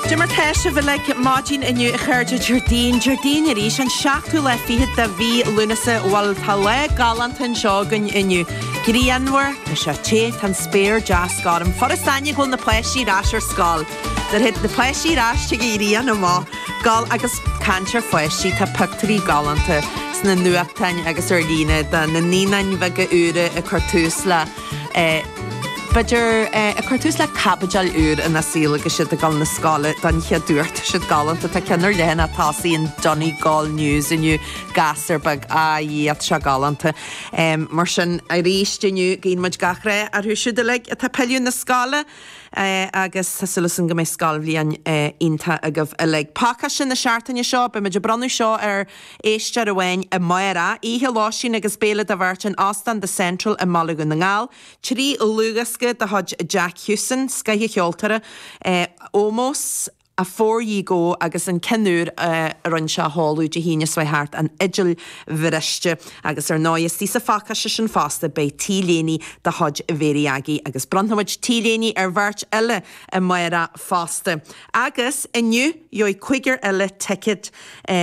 Cad é mar atá sibh uilig maidin inniu a chairde Déardaoin, Déardaoin arís an seachtú lá fichead de mhí Lúnasa bhuel tá lá galánta anseo againn inniu. Grianmhar, tá sé te, tá an spéir deas gorm. Furast aithne go bhfuil na páistí ar ais ar scoil. Nuair a théid na páistí ar ais tig an ghrian amach geal agus caint ar pháistí tá pictúirí galánta sna nuachtáin agus ar líne de na naíonáin bheaga úra ag cur tús le B'fhéidir, ag cur tús le caibidil úr ina saol agus iad ag dul na scoile don chéad uair. Tá siad galánta. Tá ceann ar leathanach tosaigh an Donegal News inniu, gasúr beag. A Dhia, tá sé galánta. Mar sin, arís inniu, guíonn muid gach rath orthu siúd uilig atá ag pilleadh na scoile agus tá súil againn go mbeidh scoilbhliain iontach agaibh uilig. Pacáiste na seachtaine seo, beidh muid ag bronnadh seo ar. Éisteoir amháin amárach, oíche lóistín agus béile do bheirt in Óstán The Central i mBaile Dhún na nGall, trí dhlúthdhiosca de chuid Jack Houston, scoth ceoltóra, Ómós, Afore Ye Go agus an ceann úr a rinne sé a sheoladh Dé hAoine seo thart, An Fhidil Bhriste, agus ar ndóigh istigh sa phacáiste sin fosta beidh t-léine de chuid Mhary Aggie agus bronnfaimid t-léine ar bheirt eile amárach fosta. Agus inniu, gheobhaidh cúigear eile ticead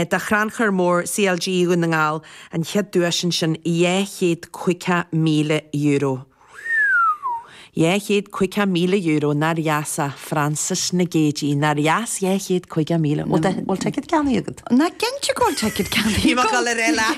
do Chrannchur Mór CLG Dhún na nGall, an chéad duais ansin, €250,000. €250,000, nár dheas é, Frances Nic Géadaigh, nár dheas €250,000? Bhfuil ticead ceannaithe agat? Nach cinnte go bhfuil ticead ceannaithe agam! Bhí mé ag dul a rá leat.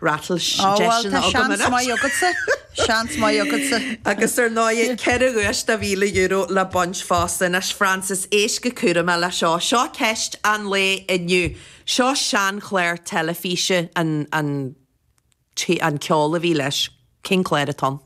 Rattle Ó, tá seans maith agatsa, seans maith agatsa. Agus ar ndóigh, ceithre dhuais de €1,000 le baint fosta. Anois, Frances, éist go cúramach le seo. Seo ceist an lae inniu. Seo seanchlár teilifíse, an ceol a bhí leis, cén clár atá ann?